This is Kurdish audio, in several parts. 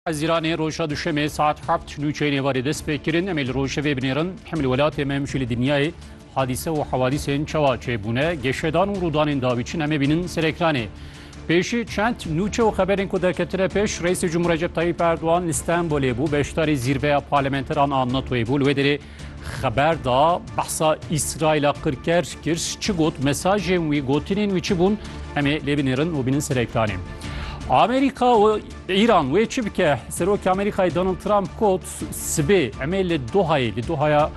Ez Îranê roja duşemê saet heft nû çeynê varê dest pê kirin em ê li rojevê binêrin hem li welatê me hem jî li dinyayê hadîse û hewadîsên çawa çêbûne geşedan û rûdanên dawî çin em ê bînin ser ekranê. Pêşî çend nûçe û xeberên ku derketine pêş Reîsê Cumhur Recep Tayyîp Erdogan li Stenbolê bû beşdarî zîrveya parlamenteran a NATOyê bû li wê derê Xeber da behsa Îsraîla qirker kir çi got mesajên wî gotinên wî çi bûn em ê lê binêrin û bînin serektanê. Amerîka û Îran wê çi bike Serokê Amerîkayê Donald Trump got sibê em ê li Dohayê li Dohaya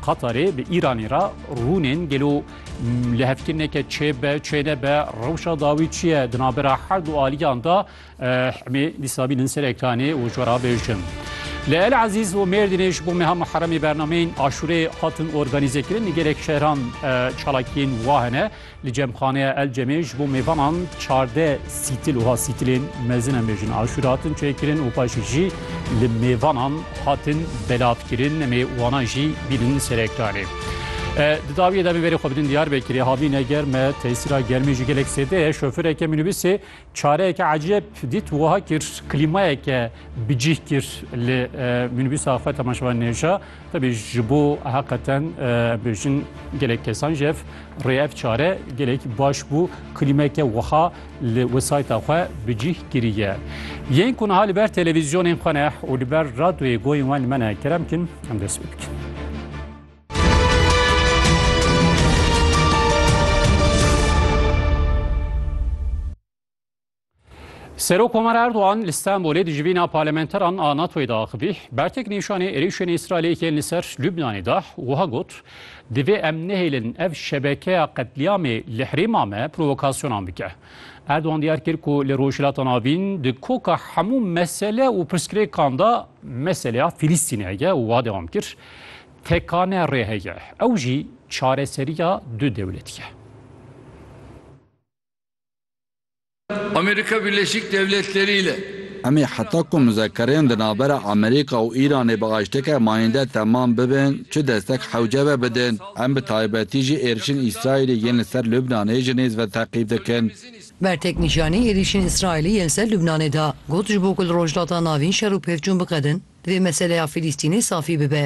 Qatarê bi Îranê re rûnên gelo li hevkirineke çêbe çênebe rewşa dawî çiye di navbera her du aliyan da Eh em ê dîsa bînin ser ekranê û ji we re bêjin. Li El Ezîz û Mêrdînê ji bo meha Muheremê bernameyên aşûrê hatin organîzekirin. Li gelek şehran çalakiyên wa hene. Li Cemxaneya El Cemê ji bo mêvanan çardeh sîtil û sîtilên mezin em bêjin aşûra hatin çêkirin û paşê jî li mêvanan hatin belavkirin. Em ê wana jî bînin ser ekranê. Eh, di dawiyê de em ê verê xwe bidin Diyarbekirê. Havîn e germ e, tesîra germê jî gelek zêde ye. Şofêreke mînîbusê Çareyeke ecêb dît û wiha kir, klîmayeke bi cih kir li mînîbûsa xwe temaşevan nêja. Tevî ji bo heqeten bêjin gelek kesan ji hev rê ev çare gelek baş bû. Klîmeke wiha li wesayta xwe bi cih kiriye. Yên ku niha li ber televîzyonên xwe ne û li ber radyoyê goyên wan li me ne kerem kin, em dest pê bikin. Serok Omar Erdoğan li Stenbolê di jivîna parlamenteran a NATO'yê de axivî bertek nîşanê êrîşên Îsraîlê yên li ser Lubnanê da û wiha got, Divê em nehêlin ev şebekeya qetlîamê li herêma me provokasyonan bike. Erdoğan diyar kir ku li Rojhilata Navîn di koka hemû mesele û pirsgirêkan de meseleya Fîlîstînê heye û wiha dewam kir, Tekane rê heye. Ew jî çareseriya du dewletî ye. Amerîka Birleşîk Dewletlerî ile. Em ê heta ku muzekerên di navbera Amerîka û Îranê bi aşteke mayînde temam bibin çi destek hewce ve bidin. Em bi taybetî jî êrişên Îsraîlê yên li ser Lubnanê ji nêz ve teqîb dikin. Bertek nîşanî êrişên Îsraîlê yên li ser Lubnanê da, got ji bo ku li Rojhilata Navîn şer û pevçûn biqedin, divê meseleya Fîlîstînê safî bibe.